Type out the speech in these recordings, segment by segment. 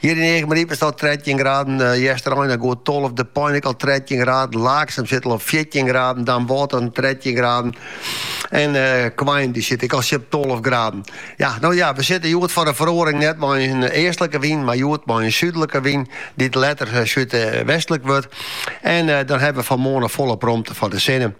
Hjir yn Eagmaryp is it al trettjin graden, Easterein in goed tolve, De Pein ek al trettjin graden, Laaksum sit al op fjirtjin graden, Damwâld al trettjin graden en Quain dy sit ek al tsjin tolve graden. Ja, no ja, we sitte hjoed foar in feroaring net mei in eastlike wyn, mar hjoed mei in súdlike wyn dy't letter súdwestlik wurdt en dan hawwe we fan 'e moarn noch folop romte foar de sinne.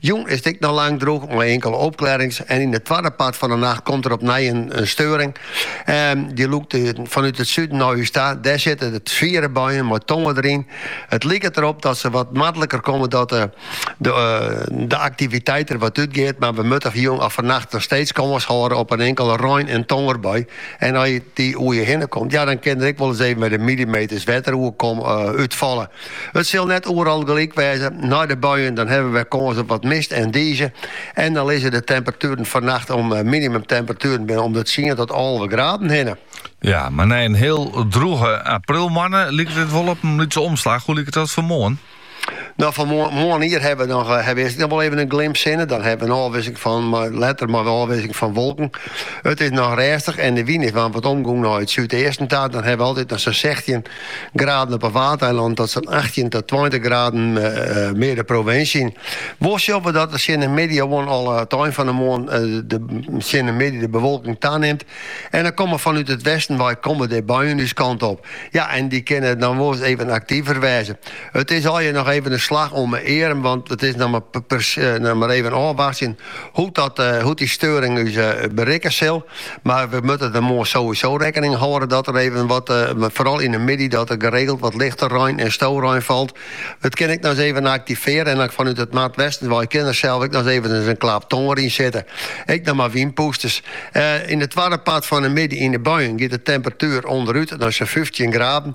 Jûn is it ek noch lang drûch mei inkele opklearrings en yn it twadde part fan de nacht komt der opnij in steuring. Ehm, dy lûkt eh, fanút it suden nei ús ta. Dêr sitte de swiere buien mei tonger deryn. It liket derop dat se wat noardliker komme dat eh, de, eh, de aktiviteit der wat útgiet, mar we moatte jûn of fannacht noch steeds kâns hâlde op in inkele rein- en tongerbui. En as dy oer je hinne komt, ja, dan kin der ek wol ris even wat millimeters wetter oer eh, útfalle. It sil net oeral gelyk wêze. Nei de buien dan hawwe we wer kâns op wat mist en dize. En dan lizze de temperatueren fannacht om minimum temperatueren binne om de tsien tot alve graden hinne. Ja, mar nei in hiel drûge aprilmoanne liket it wol op in lytse omslach. Hoe liket dat foar moarn? No, foar moarnier hawwe we noch eh, hawwe we noch wol even in glimp sinne. Dan hawwe we in ôfwikseling fan, mar letter mear in ôfwikseling fan wolken. It is noch rêstich en de wyn is wol wat omgong nei it súdeasten ta. Dan hawwe we altyd noch sa'n sechstjin Graden op 'e Waadeilannen tot sa'n achttjin tot tweintich graden mear de provinsje yn. Wol sjogge we dat tsjin de middei oan al it ein fan 'e moarn tsjin de middei de bewolking tanimt. En dan komme fanút it westen wei komme der buien ús kant op. Ja, en dy kinne dan wolris even aktiver wêze. It is allegear noch even in slach om 'e earm, want it is noch mar even ôfwachtsjen Hoe't dy steuring ús berikke sil, mar we moatte der moarn sowieso rekkening hâlde dat der even wat, foaral yn 'e middei, dat der geregeld wat lichte rein en storein falt. Dat kin ek noch ris even aktivearre en dan fanút it noardwesten wei kin der sels ek noch evens in klap tonger yn sitte. Ek noch mei wynpûsters. Yn it twadde part fan 'e middei yn 'e buien giet de temperatuer ûnderút nei sa'n fyftjin graden.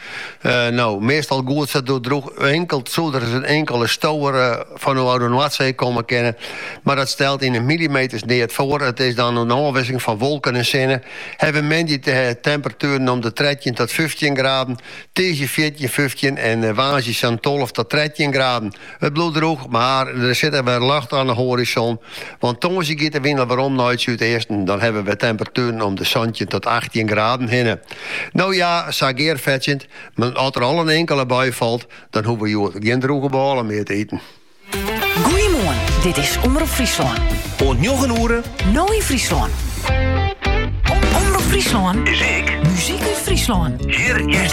No, meastal goed se doe droech inkeld soe der ris in inkele stower fanôf de Noardsee komme kinne, mar dat stelt yn 'e millimeters neat foar. It is dan in ôfwikseling fan wolken en sinne. Hawwe we moandei temperatueren om de trettjin tot fyftjin graden, tiisdei fjirtjin, fyftjin en woansdei sa'n tolve tot trettjin graden. It bliuwt drûch, mar der sit ek wer ljocht oan de hoarizon. Want tongersdei giet de wyn al werom nei it súdeasten. Dan hawwe we temperatueren om de santjin tot achttjin graden hinne. No ja, sa gearfetsjend, mar as der al in inkele bui falt, dan hoege we hjoed gjin drûge bôle mear te iten. Goeiemoarn, dit is Omrop Fryslân. Oant njoggen oere. No yn Fryslân. Omrop Fryslân is ek muzyk út Fryslân. Hjir hearst.